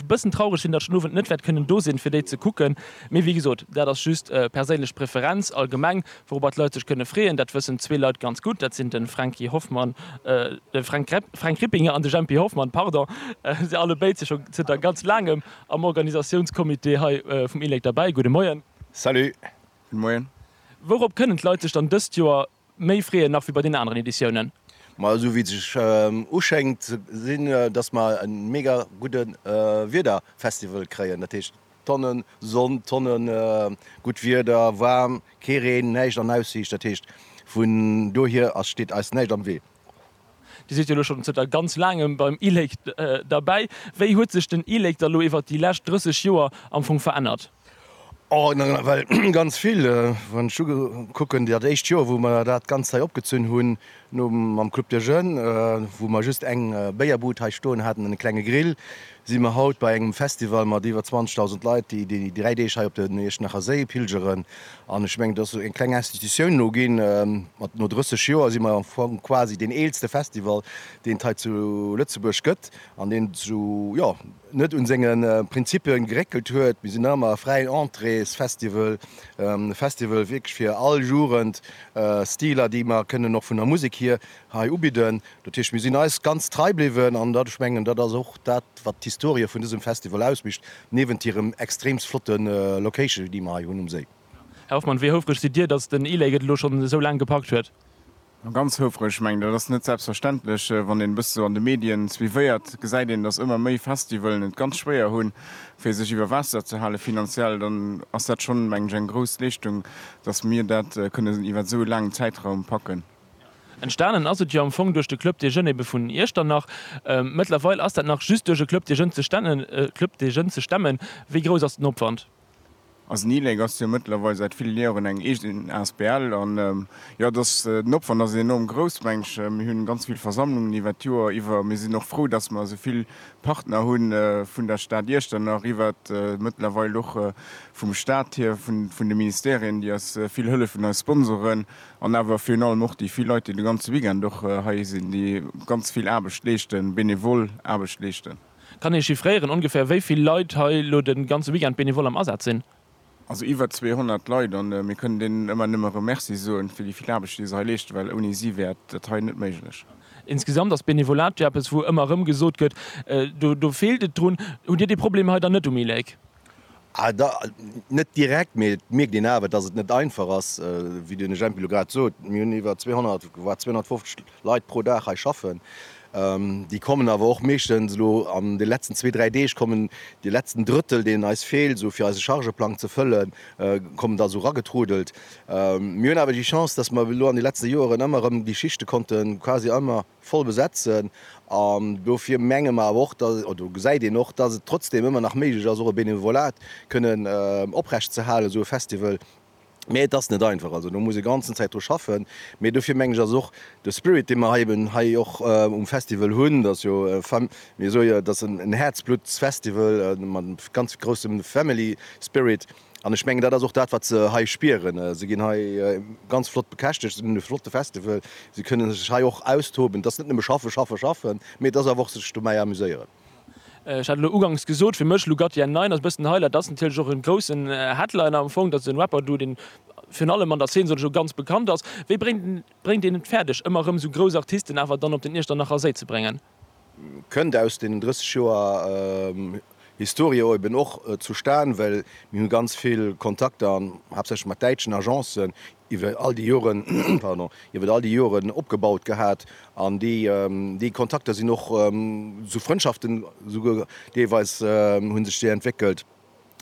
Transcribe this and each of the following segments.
Bëssen traureg sinn, datt ech den Owend net wäert kënnen do sinn, fir déi ze kucken. Mee wéi gesot, dat ass just perséinlech Preferenz. Allgemeng, wourobber d'Leit sech kënne freeën, dat wëssen zwee Leit ganz gutt, dat sinn de Franky Hoffmann, de Fränk Repp, Fränk Rippinger an de Jempy Hoffmann, pardon. Si allebéid si scho zënter ganz Laangem am Organisatiounscomité hei vum ILEC derbäi. Gudde Moien. Salut. Gudde Moien. Wourop kënnen d'Leit sech dann dëst Joer méi freeën nach wéi bei den aneren Editiounen. Ma esou wéi et sech uschéngt si datt mer e mega gudde Wiederfestival kréien, dat heescht Tonne Sonn, Tonne gutt Wieder, waarm, kee Reen, näischt an Aussiicht, dat heescht vun dohier ass steet eis näischt am Wee. Dir sidd jo elo schonn zënter ganz laangem beim e-Lake derbäi. Wéi huet sech den e-Lake da lo iwwert déi lescht 30 Joer am Fong verännert? Oh, nawell ganz vill. Wann ech ukucken, dat éischt Joer, wou mer dat Ganzt hei opgezunn hunn, nom, mam Club de Jeunes, wou mer just eng Béierbud hei stoen haten an e klenge Grill, si mer haut bei engem Festival mat iwwer 20.000 Leit, déi déi 3 Deeg hei op den Iechternacher Séi pilgeren. An ech mengen, et ass esou eng kleng Institutioun elo ginn. Mat no 30 Joer si mer am Fong quasi deen eelste Festival, deen et hei zu Lëtzebuerg gëtt an deen esou, jo, net un senge Prinzippe geréckelt huet. Mir sinn nach ëmmer e fräien Entréesfestival, e Festival wierklech fir all Jugend, Stiler, déi mer kënnen och vun der Musek hier hei ubidden. Dat heescht, mir sinn eis ganz trei bliwwen an dat, ech mengen, dat ass och dat, wat d'Historie vun dësem Festival ausmicht, niewent hirem extreemst flotte Location, déi mer hei hunn um Séi. Här Hoffmann, wéi houfreg sidd Dir, datt den e-Lake et elo schonn esou laang gepackt huet? Ganz houfreg. Ech mengen, dat ass net selbstverständlech. Wann een e bësse sou an de Medien suivéiert, gesäit een, datt ëmmer méi Festivalen et ganz schwéier hu fir sech iwwer Waasser ze hale finanziell. Dann ass dat schonn, mengen ech, eng grouss Leeschtung, datt mir dat kënnen iwwer esou e laangen Zäitraum packen. Entstanen ass et jo am Fong duerch de Club des Jeunes ebe vun Iechternach. Mëttlerweil ass dat nach just duerch e Club des Jeunes ze stemmen. Wéi grouss ass den Opwand? Also den ILEC ass jo mëttlerweil säit ville Joren eng eegen asbl an jo, dass den Opwand ass enorm grouss, meng ech. Mir hunn ganz vill Versammlungen iwwert d'Joer iwwer. Mir sinn och frou, dass mer esou vill Partner hunn, vun der Stad Iechternach iwwer, mëttlerweil och vum Staat hier, vun de Ministerien, déi eis vill hëllefen, eis Sponsoren. An awer virun allem och déi vill Leit, déi de ganze Weekend och hei sinn, déi ganz vill Aarbecht leeschten, benevol Aarbecht leeschten. Kann ee chiffréieren, ongeféier wéi vill Leit hei elo de ganze Weekend benevol am Asaz sinn? Also iwwer 200 Leit. A mir kënnen deenen ëmmer nëmme erëm Merci soen, fir déi vill Aarbecht, déi se hei leeschten, well ouni si wär dat hei net méiglech. Insgesamt ass Benevolat jo eppes, wou ëmmer erëm gesot gëtt, do feelt et drun. Hutt Dir dee Problem hei dann net um ILEC? Ah, da, net direkt, mee et mierkt een awer, dass et net einfach ass. Wéi den Jempy elo grad sot, mir hunn iwwer 200, war 250 Leit pro Dag hei schaffen. Déi kommen awer och meeschtens elo an de letzten zwee, dräi Deeg kommen de letzten Drëttel, deen eis feelt, esou fir eise Chargeplang ze fëllen, kommen da esou eragetrudelt. Mir hunn awer déi Chance, dass mer elo an de letzte Joeren ëmmer erëm déi Schichte konnte quasi ëmmer, voll besetzen an dofir menge mer awer och, dass, oder do gesäit een och, dass et trotzdem ëmmer nach méiglech ass och e Benevolat kënnen oprecht ze halen, esou e Festival, mä et ass net einfach. Also do muss ee ganzen Zäit dru schaffen, mä dofir menge ech ass och de Spirit dee mer hei eben hei och um Festival hunn, dass jo e Fam, mir soe jo, et ass en Häerzbluttsfestival mat ganz groussem Family Spirit, An ech mengen, dat ass och dat, wat se hei spieren. Se ginn hei ganz flott bekäschtegt, se hunn e flotte Festival, se kënne sech hei och austoben. Et ass net nëmme schaffen, schaffen, schaffen, mee et ass awer och sech dobäi amuséieren. Ech hat elo uganks gesot, fir mech Lugatien 9 ass e bëssen den Highlight. Dat ass natierlech och e groussen Headliner am Fong. Dat ass e Rapper do, dee virun allem an der Zeen, soll ech soen, ganz bekannt ass. Wéi bréngt een et fäerdeg, ëmmer erëm esou grouss Artisten awer dann op den Iechternacher Séi ze bréngen? kënnt aus deenen 30 Joer Historie eben och zustan, well mir hu ganz vill Kontakter, haaptsächlech mat däitschen Agencen, iwwer all déi Joren, pardon, iwwer all déi Joren opgebaut gehat an déi, déi Kontakter sinn och zu Frëndschaften esouguer deelweis, hu sech déi entwéckelt.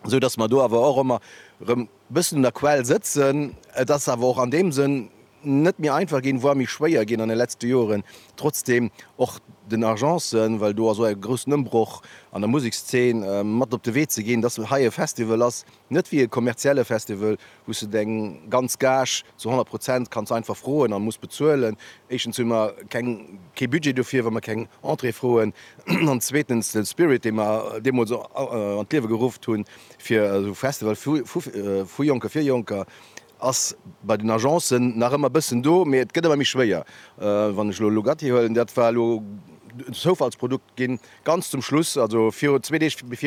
esou dass mer do awer och ëmmer erëm e bëssen un der Quell sëtzen. Et ass awer och an deem Sënn net méi einfach ginn, voire méi schwéier ginn an de letzte Joren, trotzdeem och den Agencen, well do ass och e groussen Ëmbroch an der Musekszeen, mat op de Wee ze ginn, dass hei e Festival ass, net wéi e kommerzielle Festival, Hues de deng ganz Gage zu 100 Prozent, kanns einfach froen an muss bezuelen. Éischtens hu mer keng kee Budget dofir, wa mer keng Entrée froen an zweetens den Spirit dee mer deemools an d'Liewe gerufft hunn fir esou Festival vu vu Jonke fir Jonker ass bei den Agencen nach ëmmer bëssen do, mee et gëtt ëmmer méi schwéier. Wann ech elo Lugatti huelen, dat war elo en Zoufallsprodukt ginn, ganz zum Schluss, also virun zwee Deeg,